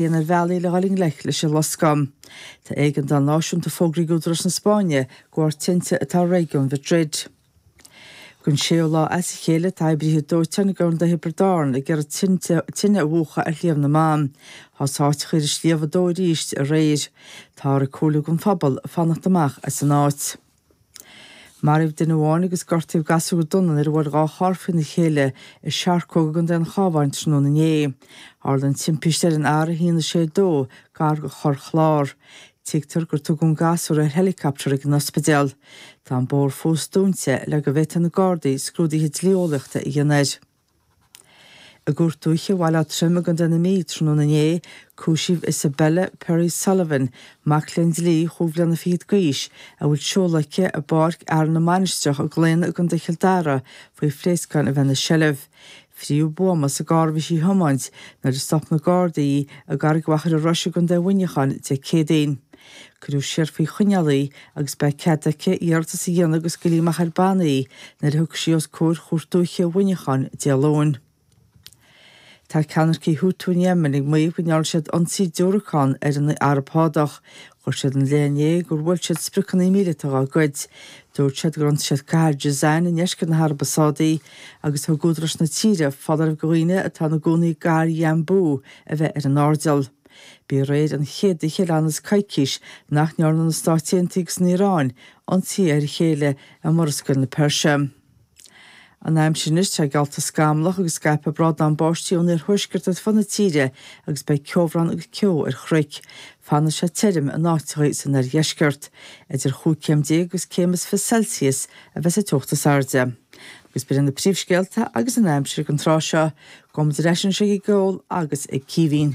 déanamh ar bhealaí le dhul i ngleic leis an loscadh. Tá éigeandáil náisiúnta fógraithe ag údaráis na Spáinne de bharr tinte atá i réigiún Mhadrid. Don séú lá as a chéile tá oibrithe dóiteáin i gContae Thiobraid Árann ag iarraidh tine a mhúchadh ar Shliabh na mBan. Thosaigh áiteacha ar an sliabh ag dó arís aréir. Táthar ag comhairliú don phobal fanacht amach as an áit. Maraíodh duine amháin agus gortaíodh gasúr go dona nuair a bhuail dhá charr faoina chéile i Searcóg i gContae an Chábháin tráthnóna inné. Tharla an timpiste ar an R162, gar do Chorr Chlár. Tuigtear gur tugadh an gasúr ar héileacaptar ag an ospidéal. Tá an bóthar fós dúnta le go bhféadfaidh na Gardaí scrúduithe dlí-eolaíochta a dhéanamh air. I gcúirt dúiche Bhaile Átha Troim i gContae na Mí tráthnóna inné, cúisíodh Isabella Perry Sullivan, mac léinn dlí chúig bhliana fichead d'aois, a bhfuil seoladh aici i bPáirc Fhearann na Mainistreach i gClaonadh i gContae Chill Dara faoi phléascáin a bheith ina seilbh. Frítheadh buama sa gcarr a bhí sí a thiomáint nuair a stop na Gardaí í i gCarraig Mhachaire Rois i gContae Mhuineacháin Dé Céadaoin. Cuireadh siar faoi choinneáil í agus beidh cead aici iarratas a dhéanamh go scaoilfí amach ar bannaí í nuair a thiocfaidh sí os comhair Chúirt Dúiche Mhuineacháin Dé Luain. Tá ceannaircigh Houthi in Éimin ag maíomh go ndearna siad ionsaí diúracán ar an Araib Shádach. Chuir siad ina leith inné gur bhuail siad spriocanna míleata dá gcuid. Dúirt siad gur ionsaigh siad cathair Jizan i ndeisceart na hAraibe Sádaí agus thug údaráis na tíre foláireamh do dhaoine atá ina gcónaí i gcathair Yanbu a bheith ar an airdeall. B'í aréir an chéad oíche le ionann's coicís nach ndearna na Stáit Aontaithe agus an Iaráin ionsaí ar a chéile i Murascaill na Peirse. An aimsir anois, tá sé geallta scamallach agus scaipfidh brádán báistí ón iarthuaisceart ar fud na tíre agus beidh ceobhrán agus ceo ar chnoic. Fanfaidh sé tirim in áiteachaí san oirdheisceart. Idir chúig chéim déag agus céim is fiche Celsius a bheas an teocht is airde. Is breá na príomhscéalta agus an aimsir ag an tráth seo, go mba dreis an tigh ag ól agus ag círín.